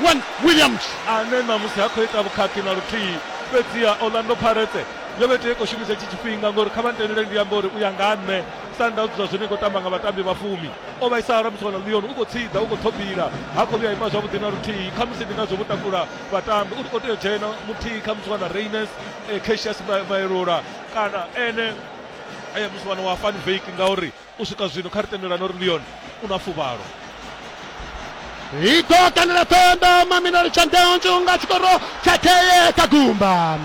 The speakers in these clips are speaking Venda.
Juan Williams. ane ṋamusi ha khou ita vhukhakhi na luthihi. Fhedziha Orlando Pirates yo vha i tea u khou shumisa itshi tshifhinga ngauri kha vha ntendele ndi ambe uri u ya nga ha nṋe Sundowns zwa zwino i khou tamba nga vhatambi vha fumi. O vhaisala musi o ḽa Lyon, u khou tshiḓa, u khou ṱhobila, ha khou vhuya a ima zwavhuḓi na luthihi. Khamusi ndi ngazwo vho takula vhatambi uri o tea u dzhena muthihi khamusi wa na Rayners, Cassius Mayelola kana ene musi wa na wa Van Wyk ngauri u swika zwino kha ri tendelane uri ndi yone u na fuvhalo i ḓo kanela pembe maminari tsha ndeonzhu nga tshikoro tsha theye kha gumba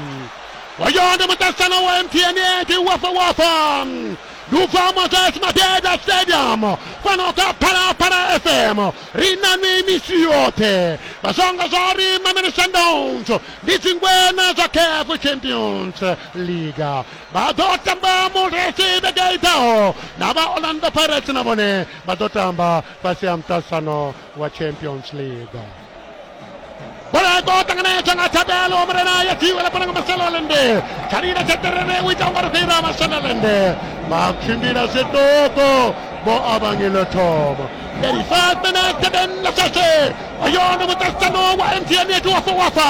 wayo ndi muṱahisano wa mtn edi wafa wafa ndi u bva moses madeda stadium fano kha phalaphala fm ri na ni misi yoṱhe vha zwongo zwa uri maminari tsha ndeonzhu ndi dzingwena zwa caf champions league vha ḓo tamba mulesi vhege i ḓaho na vha orlando pirates na vhone vha ḓo tamba fhasi ha muṱasano wa champions league bola ya khou ṱanganedzwa nga thabelo murena ya dziwe ḽa fana nga maselolende tshalila tsha terere u ita ungari fhira maselolende vha tshimbila zwiṱuku vho avhangile thoma 35 minutes then lasase oyo ndi muṱasano wa mtn yetu wafa wafa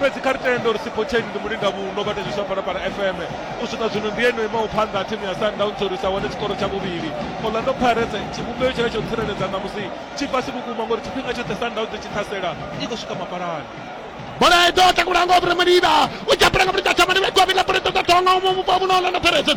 fhedzi kha ri tende uri sipotsheni ndi mulinga vhuno vha tezwiswa phalaphala fm u swika zwino ndi yeno imaho phanḓa thimu ya sundowns uri sa wane tshikoro tsha vhuvhili orlando pirates tshivhumbeo tshila tsho tsireledza ṋamusi tshi fhasi vhukuma ngori tshifhinga tshoṱhe sundowns tshi ṱhasela i khou swika mapalani bola i ḓo takulanga o vhura maliba u dzapula nga vhulita thamani vha gwa vhila bola ṱoḓa tonga u muvhupo vhuno orlando pirates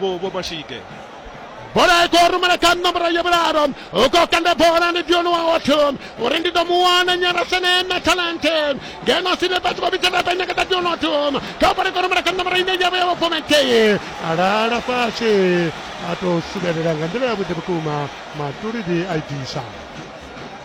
vho vho mashige bola i khou rumela kha nomboro ya vhulalo u khou kanda bola ndi dioni wa otho uri ndi ḓo mu wana nyarasene na talente ngeno sine vhathu vha vhitsa vha nyakata dioni otho kha bola i khou rumela kha nomboro ine ya vha ya vhofomekeye alala fhasi a tou subelela nga nḓila yavhuḓi vhukuma matulidi a i bvisa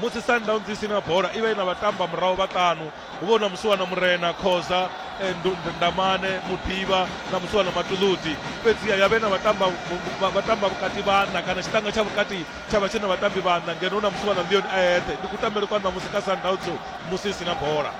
musi sundowns i si na bola i vha i na vhatamba murahu vhaṱanu hu vha hu na musiwana murena khoza eh, ndamane muḓivha na musiwana matuluti fhedziha ya vhe na vhatamba vhatamba vhukati vhanna kana tshiṱanga tsha vhukati tsha vha tshi na vhatambi vhanna ngeno hu na musiwana leon a eṱhe ndi kutambele kwa ṋamusi ka sundowns musi i si na bola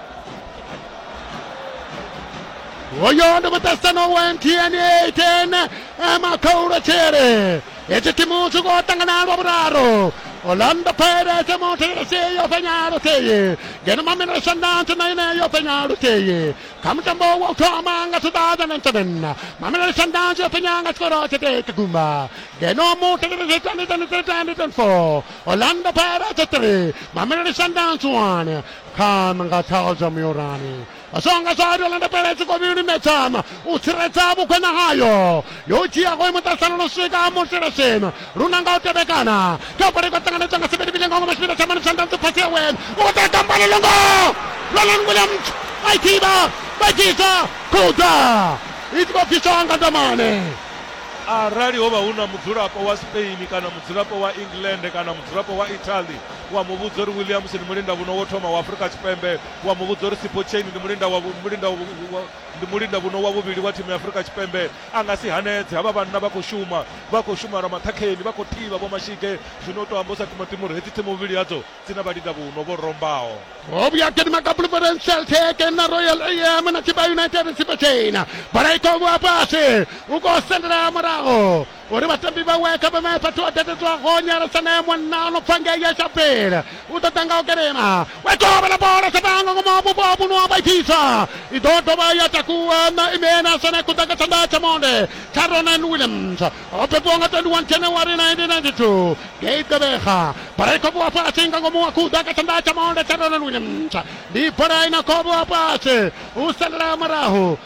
hoyo ndi muṱasano wa mtn 8 eh, makhaulatshele Hetshi timu tshi khou ṱangana lwa vhuraru orlando pirates mu thiresi yo fhenya luthihi ngeno mamelodi sundowns na ine yo fhenya luthihi kha mutambo wa u thoma nga 2007 mamelodi sundowns yo fhenya nga tshikoro tshithihi kha gumba ngeno mu thiresi 2023-2024 orlando pirates 3 mamelodi sundowns 1 kha nga tshao zwa muyorani songa zwa dola ndapele tshi kobi limetsana u tsiredza vhukwena hayo yo dzhia go imuṱasana no swika muselesena luna nga u tevhekana kha pole ko ṱanganedzwa nga sivhili vhili ngongo masipita tsha mani tsha ndanzi phasi ya wena u ṱa tamba le longo Roland Williams a ithiba vha dzhisa khuda i tshi khou bviswa nga ndamane arali ho vha hu na mudzulapo wa spain kana mudzulapo wa england kana mudzulapo wa italy wa muvhudza uri williams ni mulinda vhuno wo thoma wa afrika tshipembe wa muvhudza uri Sipho Chaine ndi mulinda wa mulinda wa ndi mulinda vhuno wa vhuvhili wa thimu ya Afrika Tshipembe a nga si hanedze havha vhanna vha khou shuma vha khou shuma lwa maṱhakheni vha khou thivha vho mashige zwino u to amba u sa timatima uri hedzi thimu vhuvhili hadzo dzi na vhalinda vhuno vho rombaho ho vhuya gidima kha Bloemfontein Celtic na Royal am na Chippa United Sipho Chaine bola i khou vhuya fhasi u khou sendela murahu uri vhatambi vhawe kha vheme fhethu ho tetetwa ho nyalesa naye mwanna o no pfa ngei ya shapele u ḓo ḓa nga u kelema we kovhela bola satango ngomu ha vhupo vhuno wa vhaithisa i ḓo dovha ya takuwa na imena sone kuḓa nga tshanḓa tsha monde tsha ronan williams o bebiwa nga 21 january 1992 ngei ḓevhega bola i khobiwa fhasi nga ngomu wa kuḓa nga tshanḓa tsha monde tsha ronan williams ndi bola i na khobiwa fhasi u salela murahu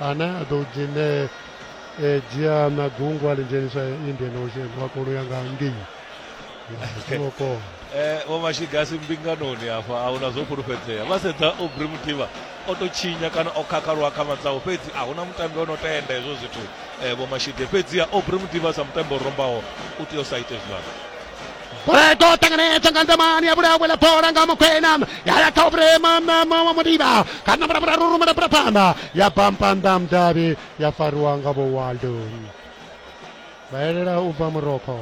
ane a ḓo dzhene e, dzhia na gungwa ḽi dzhenisa indian ocean wa kona u ya nga ngei singokona eh, vho mashigasi mbinganoni afha a huna zwo fhulufhedzea vha sedza obri mutiva o tou tshinya kana o khakhaliwa kha matsaho fhedzi a huna mutambi o no tenda hezwo zwithu eh, vho mashige fhedzi a obri mutiva sa mutambi o rombaho u tea u sa ite zwivhana Brego tanganedza nga nzamani ya vhulawe ḽa bola nga mukhwena ya ya kha vhurema wa mudiba kha namba namba raru rumela bula phanḓa ya bampanda mudavhi ya fariwa nga vho waldo vha elela u bva muroko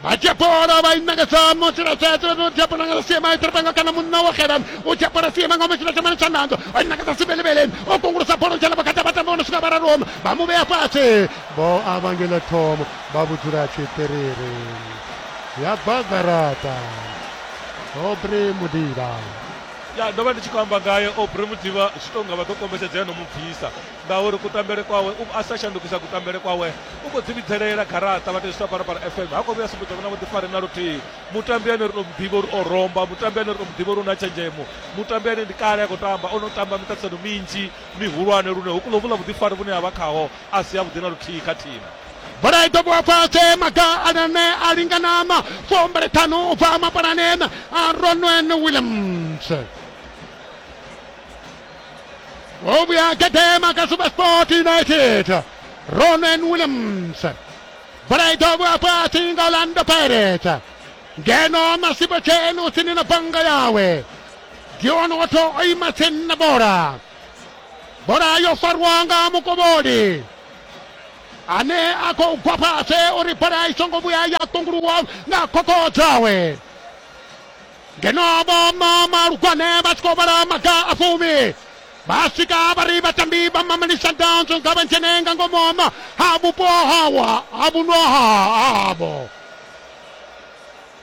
vha dzhia bola vha i ṋangedza mutsilatsetse no dzhia bola nga siema itiripanga kana munna wa xela u dzhia bola siema nga mutsila tshamani tsha nando vha i ṋangedza sibelebeleni o kungulusa bola u dzhela vhakati vha tamba vho no swika vhararoma vha mu vhea fhasi vho avangela thomo va vhudzula tshiṱiriri ya bva garaṱa obre mudila ya ndo vha ndi tshi khou amba ngaye obre mudiba zwi tou nga vha ḓo kombetshedza ya no mu bvisa ngauri kutambele kwawe a sa shandukisa kutambele kwawe u khou dzivhidzelela garaṱa vha tezwi saparapara fm ha khou vhuya sumbedza vhona vhuḓifari na luthihi mutambi ane ri to muḓivha uri o romba mutambi ane ri to muḓivha uri u na tshenzhemo mutambi ane ndi kale a khou tamba o no tamba miṱaṱisano minzhi mihulwane lune hu kulo vhula vhuḓifari vhune ha vha khaho a si avhuḓi na luthihi kha thimu bola i dobiwa fhasi maga alane a linganama fumbele ṱhanu u bva mapalaneni a ronwen williams o vhuya gedema kha supersport united ronwen williams bola i dobiwa fhasi nga orlando pirates ngeno masibo tsheni u tsini na banga yawe dion wato o ima tsini na bola bola yo farwa nga mukovholi ane a khou gwa fhasi uri bola i songo vhuya ya ṱunguluwa nga khokho dzawe ngeno vho malugwane vha tshi khou vhala maga a fumi vha swika vha ri vhatambi vha mamelisa danzo nga vha dzhene nga ngomu ha vhupo hawa ha vhuno havho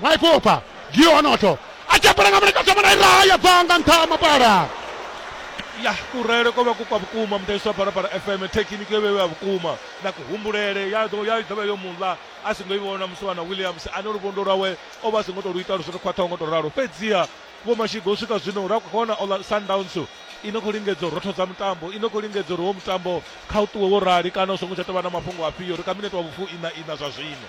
mwaipoopa gionoto a tshi apela nga muleka thoma na iraha ya bva nga nṱha ha mapala ya kurele ko vha ku kwa vhukuma mudavhisi wa barabara fm thekhiniki yo vhevha vhukuma na kuhumbulele ya ḓo- ya ḓovha yo muḽa a songo i vhona musi wana williams ane luvhondo lwawe o vha a songo tou lu ita lu songo khwaṱhaho ngo tou ralo fhedziha vho mashigo u swika zwino ra khou vhona ola sundowns i no khou lingedza u rothodza mutambo i no khou lingedza uri wo mutambo kha u ṱuwe wo rali kana u songo tsha tou vha na mafhungo afhio ri kha minete wa vhufu ina ina zwa zwino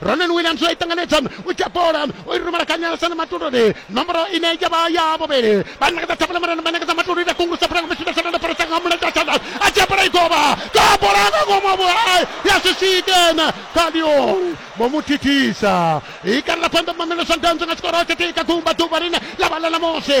ronan williams a itanganedza u dzhia bola u i rumela kha nyalesana matuluni nomboro ine ya vha ya vhuvhili vha ṋekedza thabula murena vha ṋekedza matuluni a kungulusa phulanga vhashida shanana phoresa nga mulenzhe a tshandas a dzhia bola i govha ka bola nga ngomu a vhulai ya si swikena kha leon vho mu thithisa i kalela phanḓa mamelesa ndanzo nga tshikoro tshithihi kha gumba ḓuvha line ḽa vha ḽa ṋamusi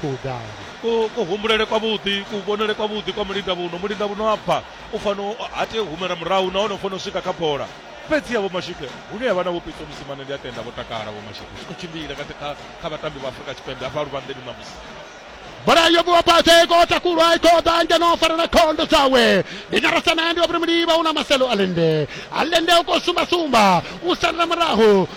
khou ḓala kuhumbulele kwa vhuḓi kuvhonele kwa vhuḓi kwa mulinda vhuno mulinda vhuno a bva u fano ha tei u humela murahu nahone u fano u swika kha bola fhedzi ya vho mashike hune yavha na vho pitso musimane ndi a tenda vho takala vho mashike zwi khou tshimbila kha vhatambi vha afurika tshipembe hafha luvhanḓeni ṋamusi bola yo vhuwa fhasi i khou takulwa i khou ḓa ngeno o fara na khondo dzawe ndi nyarasana ndi wa vhuri muliva u na maselo a lende a lende u khou sumbasumba u salela murahu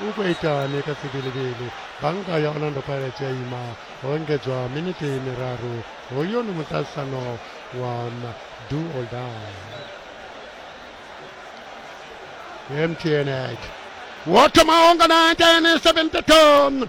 U khou itani kha Tsibilivili? Bannga ya Orlando Pirates ya ima ho engedzwa miniti miraru. Hoyu ndi muṱahisano wa do or die. MTN Ag. Wo thoma ho nga 1972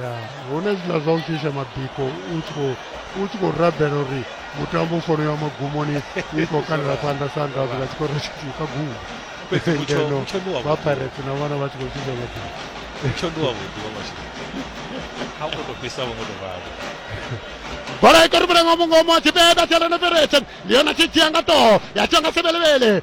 ya hune zwiḽa zwa u shisha mabiko u tshi khou u tshi khou rabela uri mutambo u fanela magumoni i khou kalela phanḓa sandazi nga tshikoro tshithihi kha gumu ngeno vha pirate na vhana vha tshi khou shisha mabiko mutsho ndi wavhuḓi wa masheleni a u khou tou fhisa vho ngo tou vhavho bola i koribelela nga mungomo tshipeda sialana pirate ndi yone tshi dzhia nga ṱoho ya tshiwa nga sebelebele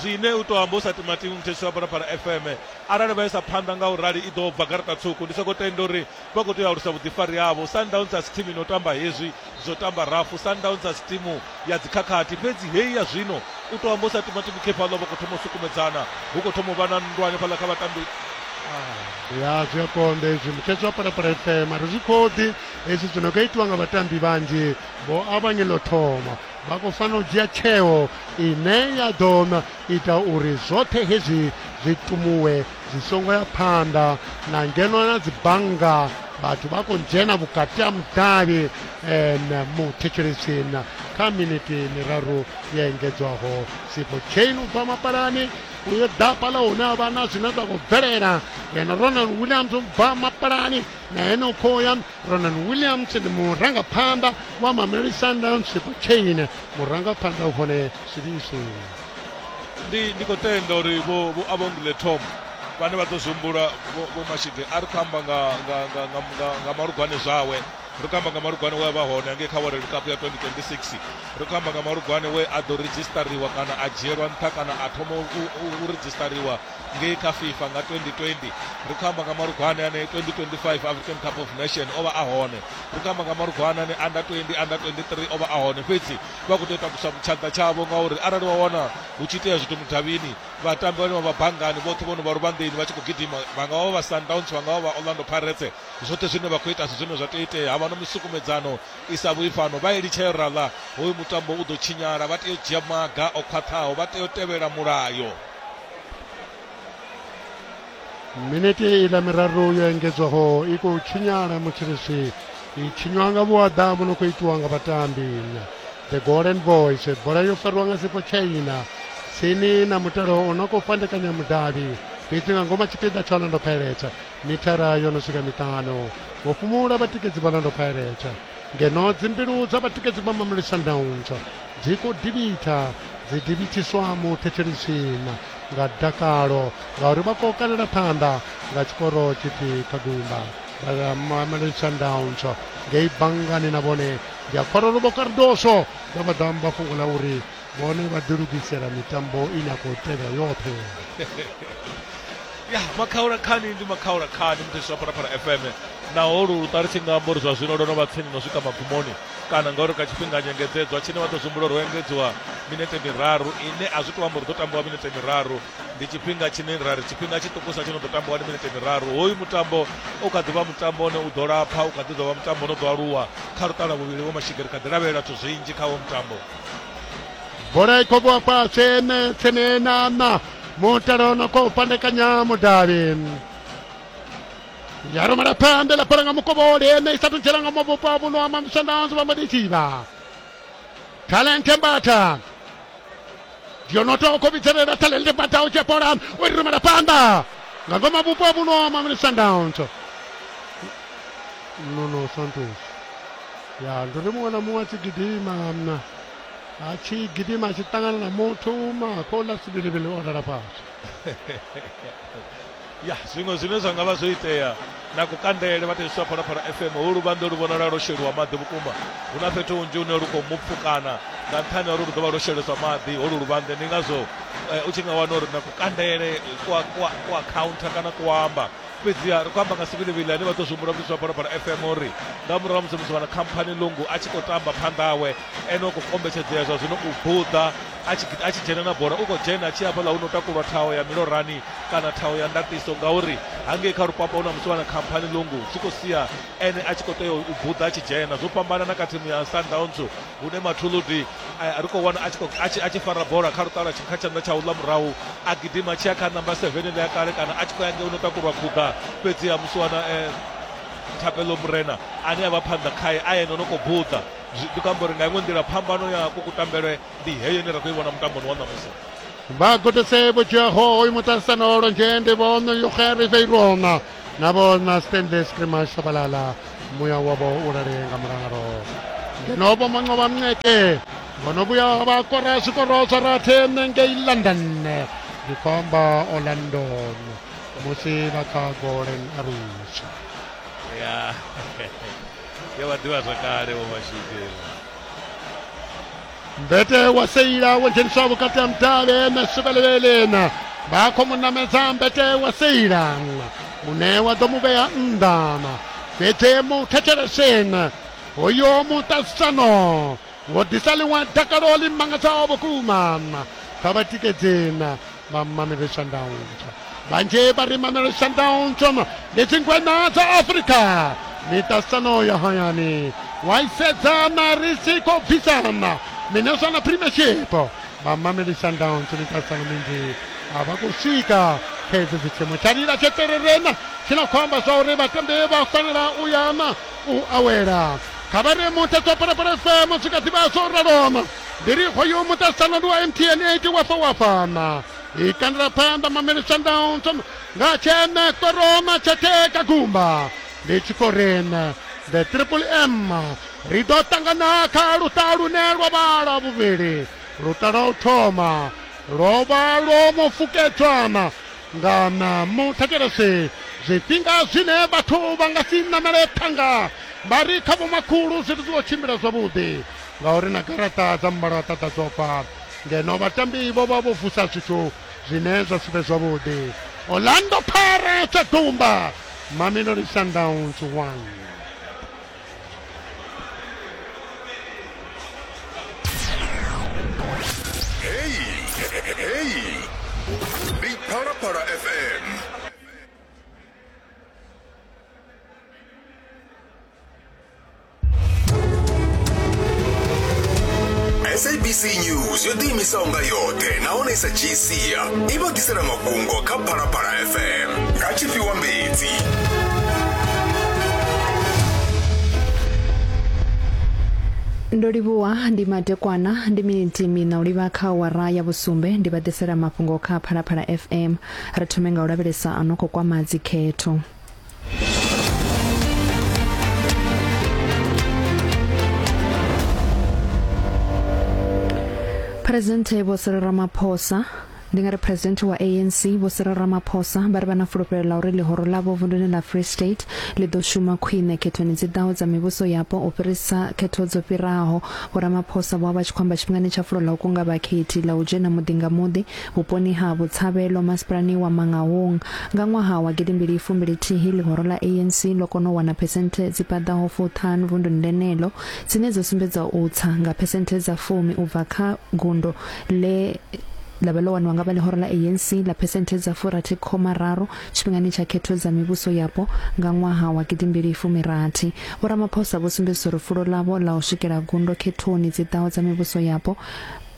zwine u tou amba u sa timatimi muthetshelwa phalaphala fm arali vha isa phanḓa nga u rali i ḓo bva garaṱa tswuku ndi sokou tenda uri vha khou tea u alusa vhuḓifari havho sundowns a si thimu ino tamba hezwi zwo tamba rafu sundowns a si thimu ya dzikhakhathi fhedzi heyi ya zwino u tou amba u sa timatimi khefhaḽo vha khou thoma u sukumedzana hu khou thoma u vha na nndwa hanefhaḽa kha vhatambi ya zwi a konḓa hezwi muthetsho wa parapara fm ari zwi khoḓi hezwi zwi no nga itiwa nga vhatambi vhanzhi vho avhanye ḽo thoma Vha khou fanela u dzhia tsheo ine ya ḓo ita uri zwoṱhe hezwi zwi tumuwe zwi songo ya phanḓa na ngeno na dzi bannga vhathu vha khou dzhena vhukati ha mudavhi um muthetshelesini kha miniti miraru ya engedzwaho sipo chain u bva mapalani uyo dapa la hune a vha na zwine zwa khou bvelela yena ronald williams u bva mapalani na ene u khoya Ronan Williams ndi murangaphanḓa wa Mamelodi Sundowns Kane murangaphanḓa u hone Sibisi ndi ndi khou tenda uri vho vho avondile Tom vhane vha ḓo zwihumbula vho Mashige a ri khou amba nga nga nga nga nga, nga malugwane zwawe ri khou amba nga malugwane we a vha hone angei kha World Cup ya 2026 ri khou amba nga malugwane we a ḓo redzhistariwa kana a dzhielwa nṱha kana a thoma u, u, u redzhistariwa ngei kha fifa nga 2020 ri khou amba nga malugwane ane 2025 african cup of nation o vha a hone ri khou amba nga malugwane ane under 20 under 23 o vha a hone fhedzi vha khou tea u takusa tshanḓa tshavho ngauri arali wa wana hu tshi itea zwithu mudavhini vhatambi vhane vha vha banngani vhoṱhe vho no vha luvhanḓeni vha tshi khou gidima vha nga vha vha sundowns vha nga vha vha orlando pirates zwoṱhe zwine vha khou ita si zwine zwa tea itea ha vha no misukumedzano i sa vhuyi fhano vha elitsha yo rala hoyu mutambo u ḓo tshinyala vha tea u dzhia maga o khwaṱhaho vha tea u tevhela mulayo minete i ḽa miraru yo engedzwaho i khou tshinyala mutshilisi i tshinywa nga vhuaḓa vhu no khou itiwa nga vhatambi the golden boys bola yo fariwa nga sifo chaina tsini na mutalo o no khou fhandekanya mudavhi fhedzi nga ngoma tshipiḓa tsha orlando pirates mithara yo no swika miṱanu vho fhumula vhatikedzi vha orlando pirates Ngeno dzimbilu dza vhatikedzi vha Mamluli Sundowns dzi khou divhitha, dzi divhithiswa muṱhetsheli tshiṋa nga dakalo ngauri vha khou kalela phanḓa nga tshikoro tshithihi kha gumba. Mamelodi Sundowns ngei banngani na vhone ndi a Khwarolovho Cardoso vha vha ḓa amba fhungo ḽa uri vhone vha ḓilugisela mitambo ine ya khou tevhela yoṱhe ya makhaula khani ndi makhaula khani muthesi wa phalaphala fm naho lu luṱali tshi nga amba uri zwa zwino lwo no vha tsini no swika magumoni kana ngauri kha tshifhinga nyengedzedzwa tshine vha ḓo zwimbula uri ho engedziwa minete miraru ine a zwi tou amba uri ḓo tambiwa minete miraru ndi tshifhinga tshine ra ri tshifhinga tshiṱukusa tshi no ḓo tambiwa ndi minete miraru hoyu mutambo u kha ḓi vha mutambo une u ḓo lapha u kha ḓi ḓo vha mutambo no ḓo aluwa kha luṱala vhuvhili vho mashigiri kha ḓi lavhelela zwithu zwinzhi kha wo mutambo bola i khou vhuwa fhasi ene tsini na na mutala o no khou fhandekanya mudavhi ya rumela phanḓa ḽa bola nga mukovholi ene i sa thu dzhela nga mavhupo a vhuno ama mishandanzi vha mbo ḓi tshivha talente mbatha yo no tou khou vhidzelela talente mbatha u dzhia bola u i rumela phanḓa nga ngoma vhupo a vhuno ama mishandauntso no no santos ya ndo ri muṅwe na muṅwe a tshi gidima mna a tshi gidima a tshi ṱangana na muthu makola sivhilivhili o lala fhasi ya zwiṅwe zwine zwa nga vha zwo itea na kukandele vhathetshiswa phalaphala fm hu luvhanḓo lu vhonala lwo sheliwa maḓi vhukuma hu na fhethu hunzhi hune lu khou mupfukana nga nṱhani ha uri lu ḓo vha lwo sheleswa maḓi holu luvhanḓe ndi ngazwo eh, u tshi nga wana uri na kukandele kwa, kwa, kwa counter kana kuamba fhedziha ri khou amba nga Sibili Vhili ane vha ḓo zwihumbula vhutshitshi ha Phalaphala FM uri nga murahu ha musi musi wana Khamphani Lungu a tshi khou tamba phanḓa hawe ene u khou kombetshedzea zwa zwino u buḓa a tshi, a tshi dzhena na bola u khou dzhena a tshi hafhaḽa hu no takulwa thaho ya milorani kana thaho ya ndatiso ngauri hangei kha rupapa hu na musi wana Khamphani Lungu zwi khou sia ene a tshi khou tea u buḓa a tshi dzhena zwo fhambana na kha thimu ya Sundowns hune Mathuludi ri khou wana a tshi fara bola kha luṱala kha tshanḓa tsha uḽa murahu a gidima tshi ya kha namba seven ḽa kale kana a tshi khou ya ngei u no takulwa khuḓa fhedziha musi wana thapelo murena ane a vha phanḓa khae a yene o no khou buḓa ndi khou amba uri nga iṅwe nḓila phambano ya kukutambelwe ndi heyo ine ra khou i vhona mutamboni wa ṋamusi vhagudisi vho dzhiaho hoyu muṱahisano lwa nzhende vhono yoga riveirona na vho na stende scrima shabalala muya wavho u lale nga mulalo ngeno vho manqoba mnqeke vhono vhuya vha kora zwikoro zwa rathe ngei london ndi khou amba orlandon musi vha kha golden arus ya ya vha ḓivha zwakale vho mashidela mbete wa seila wo dzheniswa vhukati ha mudavhe na suvhelelele na vha khou mu namedza mbete wa seila une wa ḓo mu vhea nnḓa fhedzi mu thetsheleseni hoyo muṱaṱisano wo ḓisa ḽiṅwe dakalo ḽi mangadzaho vhukuma kha vhatikedzi ba Mamelodi Sundowns banje ba ri Mamelodi Sundowns ndi dzingweṋa dza Afrika miṱasano ya hayani wa isedza mari si khou bvisana mine zwa na premiership ba Mamelodi Sundowns miṱasano minzhi a vha khou swika kha hedzi dzithimu tsha lila tshetererena tshi no khou amba zwa uri vhatambi vha fanela u yana u awela kha vha ri muthetso phalaphala fm zwi kha ḓivha zwo raloma Ndiriho yo muṱaṱisano ndi wa mtn 8 wafa wafana i kandela phanḓa mameli sundowns nga tshene koroma tshateka gumba ndi tshi khou rene the triple m ri ḓo ṱangana kha luṱa lune lwa vhala vhuvhili luṱa lwa u thoma lwo vha lwo mu fukedzwana nga na muthetshelesi zwifhinga zwine vhathu vha nga si namele thanga vha ri kha vhomakhulu zwithu zwi khou tshimbila zwavhuḓi ngauri na garaṱa dza muvhalaṱa ḓa dzo bva ngeno vhatambi vho vha vho vusa zwithu zwine zwa si vhe zwavhuḓi orlando pirates a dumba mamelodi sundowns 1 sabc news yo ḓiimisaho nga yoṱhe nahone i sa dzhii sia i vha ḓisela mafhungo kha phalaphala fm nga tshifhiwa mbedzi ndo livhuwa ndi madekwana ndi miniti mina u livha kha wara ya vhusumbe ndi vha ḓisela mafhungo kha phalaphala fm ri thome nga u lavhelesa a no khou kwama dzikhetho Presidente Vho Cyril Ramaphosa ndi nga ri president wa ANC Vho Cyril Ramaphosa vha ri vha na fulufhelo ḽa uri ḽihoro ḽavho vunduni ḽa Free State ḽi ḓo shuma khwine khethoni dzi ḓaho dza mivhuso yapo u fhirisa khetho dzo fhiraho. Vho Ramaphosa vho vha tshi khou amba tshifhingani tsha fulo ḽa u kunga vhakhethi ḽa u dzhena muḓi nga muḓi Vhuponi ha Botshabelo masipalani wa Mangaung, nga ṅwaha wa gidimbili fumbili thihi ḽihoro ḽa ANC ḽo kona u wana phesenthe dzi paḓaho fuṱhanu vunduni ḽeneḽo, dzine dza sumbedza u tsa nga phesenthe dza fumi u bva kha gundo ḽe ḽa vha ḽo waniwa nga vha ḽihoro ḽa ANC ḽa phesenthe dza furathi khoma raru tshifhingani tsha khetho dza mivhuso yapo nga ṅwaha wa gidimbili fumirathi. Vho Ramaphosa vho sumbedzisa uri fulo ḽavho ḽa u swikela gundo khethoni dzi ḓaho dza mivhuso yapo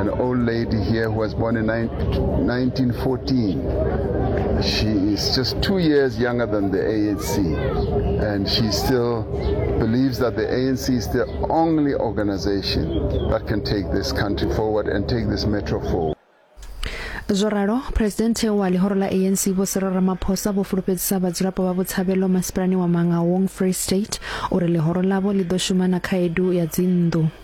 An old lady here who was born in 1914. She is just two years younger than the ANC, and she still believes that the ANC is the only organization that can take this country forward and take this metro forward. zwo ralo phuresidennde wa ḽihoro ḽa anc vho siro ramaphosa vho fulufhedzisa vhadzulapo vha vhutshavhelo masipalani wa manga wong free state uri ḽihoro ḽavho ḽi ḓo shuma na khaedu ya dzinnḓu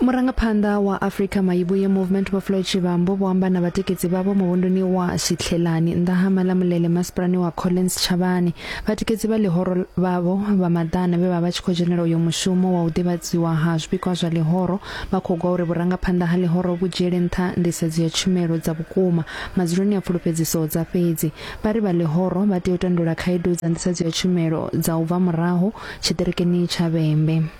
Murangaphanḓa wa Afrika Mayibuye Movement Vho Floyd Shivambu vho amba na vhatikedzi vhavho muvhunduni wa Shitlhelani nnḓa ha Malamulele masipalani wa Collins Tshavhani. Vhatikedzi vha ḽihoro vhavho vha maḓana vhe vha vha tshi khou dzhenela uyo mushumo wa u ḓivhadziwa ha zwipikwa zwa ḽihoro vha khou gwa uri vhurangaphanḓa ha ḽihoro vhu dzhiele nṱha nḓisedzo ya tshumelo dza vhukuma madzuloni a pfulufhedziso dza fhedzi. Vha ri vha ḽihoro vha tea u tandulula khaedu dza nḓisedzo ya tshumelo dza u bva murahu tshiṱirikini tsha Vhembe.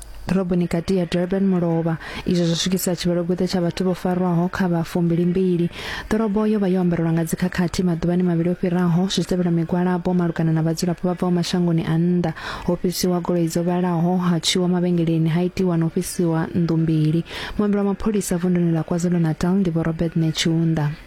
ḓoroboni kati ya Durban mulovha izwo zwo swikisa tshivhalogweṱe tsha vhathu vho farwaho kha vha fumbilimbili ḓorobo yo vha yo ambarelwa nga dzikhakhathi maḓuvhani mavhili o fhiraho zwi tevhela migwalabo malugana na vhadzulapo vha bvaho mashangoni a nnḓa ho fhisiwa goloi dzo vhalaho ha tswiwa mavhengeleni ha itiwa na u fhisiwa nnḓu mbili muambeli wa mapholisa vunduni ḽa kwazulu-natal ndi vho robert netshiunda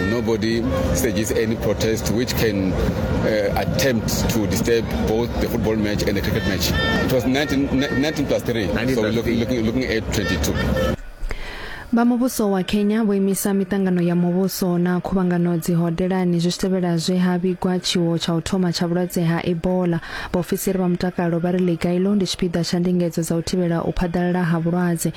Nobody stages any protest which can uh, attempt to disturb both the football match and the cricket match. It was 19, 19 plus 3, 19 so we're looking, looking, looking at 22. vha muvhuso wa kenya vho imisa miṱangano ya muvhuso na khuvhangano dzihodelani zwi tshi tevhela zwe ha vhigwa tshiwo tsha u thoma tsha vhulwadze ha ebola vhaofisiri vha mutakalo vha ri liga ilo ndi tshipiḓa tsha ndingedzo dza u thivhela u phaḓalala ha vhulwadze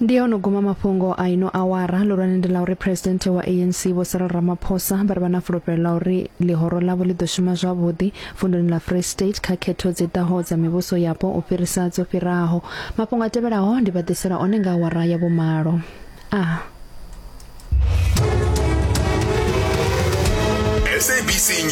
ndi ono guma mafhungo a ino awara lulwane ndi la uri president wa anc vho cyril ramaphosa vha ri vha na fulufhelo la uri ḽihoro ḽavho ḽi ḓo shuma zwavhuḓi vunduni ḽa free state kha khetho dzi ḓaho dza mivhuso yapo u fhirisa dzo fhiraho mafhungo a tevhelaho ndi vha ḓisela one nga awara ya vhumalo a ah. sabc